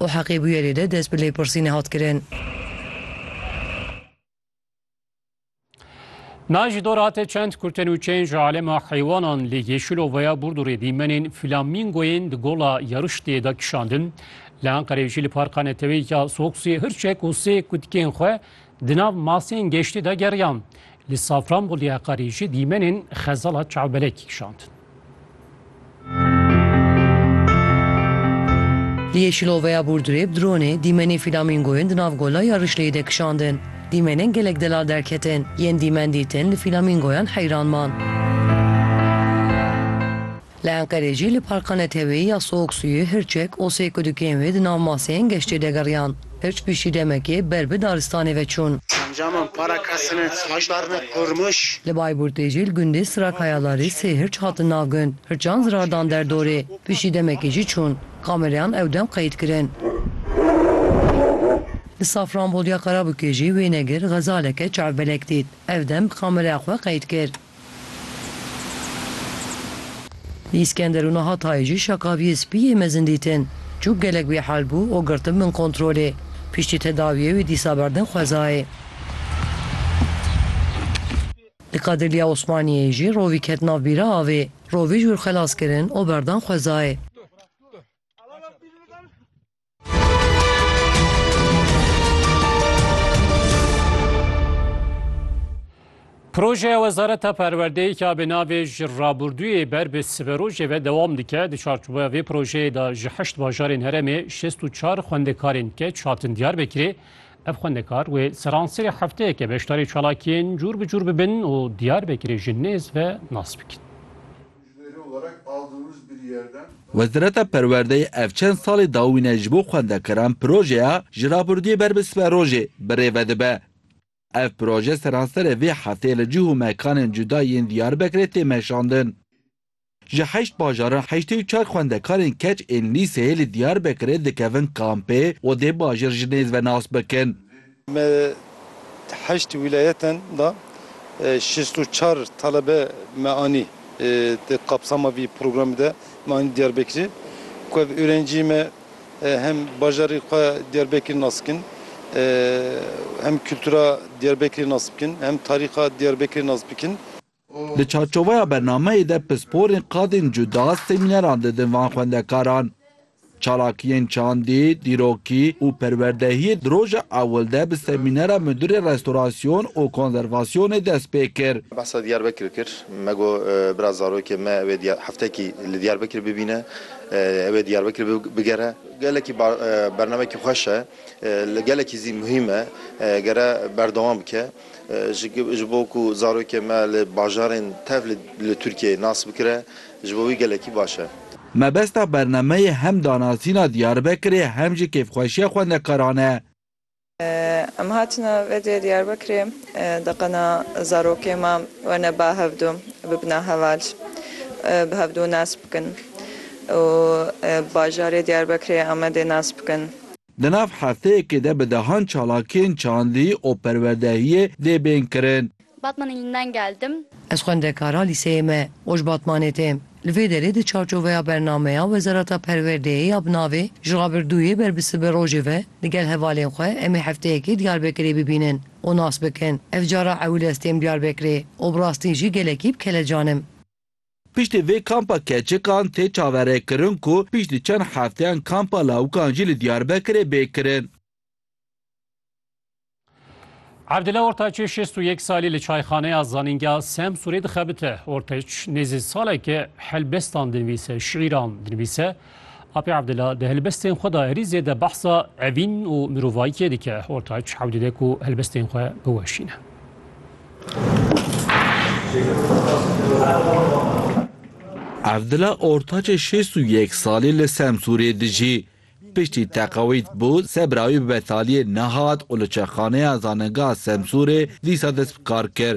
û heqê bûyerê de dest bi lêpirsînê hat kirin. Na ji dor hate çend kurtenûçeyên ji alema heywanan li Yeşilovaya Burdurê dîmenên flamîngoyên di gola Yarıştê de kişandin. Li Enqereyê jî li parka neteweyî ya Soksiyê hirçek û sê kutikên xwe di nav masên geştê de geriyan. Li Safranboliyê Heqarê jî dîmenên xezala çavbelekî kişandin. Li Yeşiloveya Burdurê bi dronê dîmenê fîlamîngoyên di nav gola ya Rişleyê de kişandin. Dîmenên gelek delal derketin. Yên dîmen dîtin li fîlamîngoyan heyran man. Li Enqerê jî li parka neteweyî ya Soğuk Suyu, Hirçek, Osê Kudukên wê di nav maseyên geştê de geriyan. Hirç piştî demekê ber bi daristanê ve çûn. Encaman para kesine haşdarine Kurmuş. Li Bayburtê jî li gundê Sirakayalarê sê hirç hatin nav gund. Hirçan zirar dan der dorê. Piştî demekê jî çûn. Kamereyan ew dem qeyd kirin. Li Safranbolya Karabûkê jî wênegir xezaleke çavbelek dît. Ev dem bi kamereya xwe qeyd kir. Îskender û niha tayê jî şakaviyê spî yê mezin dîtin. Çûk gelek wê hal bû û girtin bin kontrolê. Piştî tedawiyê wê dîsa berdin xwezayê. Li Kadirliya Osmaniyeyê jî rovî ket nav bîra avê. Rovî ji wir xelas kirin û berdan xwezayê. Projeya Wezareta Perwerdeyê ka bi navê ji rabûrdûyê ber bi siberojê ve dewam dike di çarçoveya vê projeyê de ji heşt bajarên herêmê şêst û çar xwendekarên keç hatin Diyarbekirê. Ev xwendekar wê seranserê hefteyeke beşdarî çalakiyên cûr bi cûr bibin û Diyarbekirê ji nêz ve nas bikin. Wezareta Perwerdeyê ev çend salê dawîne ji bo xwendekaran projeya Ji Rabûrdiyê Ber Bi Sibe Rojê bi rê vedibe. Ev proje seranserê vê hefteyê li cih û mekanên cuda yên Diyarbekirê tê meşandin. Ji heşt bajaran heştê û çar xwendekarên keç ên lîseyê li Diyarbekirê dikevin kampê û dê bajêr ji nêz ve nas bikin. Me di heşt wîlayetan de şêst û çar talebe me anî di kapsama vî programî de me anî Diyarbekirê ku ev ûrencîyê me hem bajarê xwe Diyarbekir nas bikin hem kultura Diyarbekirê nas bikin hem tarîxa Diyarbekirê nas bikin. Di çarçoveya bernameyê de pisporên qadên cuda semîneran didin van xwendekaran. Çalakiyên çandî, dîrokî û perwerdehiyê di roja ewil de bi semînera Mudîrê Restorasyon û Konzervasyonê dest pê kir. Behsa Diyarbekir kir. Me got bira zarokê me ew ê heftekî li Diyarbekir bibîne, ew ê Diyarbekir bigere. Gelekî bernameyekî xweş e, gelekî zî muhîm e, gere berdewam bike. Ji bo ku zarokê me li bajarên tev li Tirkiyeyê nas bikire, ji bo wî gelekî baş e. Mebesta bernameyê hem danasîna Diyarbekirê hem jî kêfxweşiya xwendekaran e. Em hatine vedê Diyarbekirê deqena zarokê me wene ba hevdu bibina heval, bi hevdu nas bikin û bajarê Diyarbekirê, Amedê nas bikin. Di nav hefteyekê de bi dehan çalakiyên çandî û perwerdehiyê dê bên kirin. Batman ilinden geldim. Ez xwendekara lîseyê me û ji Batmanê têm. Li vê derê di çarçoveya bernameya Wezareta Perwerdeyê ya bi navê Ji Rabirdûyê ber bi Sibi Rojê ve li gel hevalên xwe em ê hefteyekê Diyarbekirê bibînin û nas bikin. Ev cara ewil ez têm Diyarbekirê û bi rastî jî gelekî bi kelecan im. Piştî vê kampa keçikan tê çaverêkirin ku piştî çend hefteyan kampa lawikan jî li Diyarbekirê bê kirin. Evdile Ortaçê şêst û yek salî li çayxaneya zanîngeha Semsûrê dixebite. Ortaç nêzî saleke helbestan dinivîse, şîîran dinivîse, Apê Abdullah di helbestên xwe de herî zêde behsa evîn û mirovayîkê dike. Ortaç hewl dide ku helbestên xwe biweşîne. Evdila ortaçê şêst û yek salî li Semsûrê dijî. Piştî teqewît bû, sebra wî bi betaliyê nehat û li çekxaneya Zanengeha Semsûrê dîsa dest bi kar kir.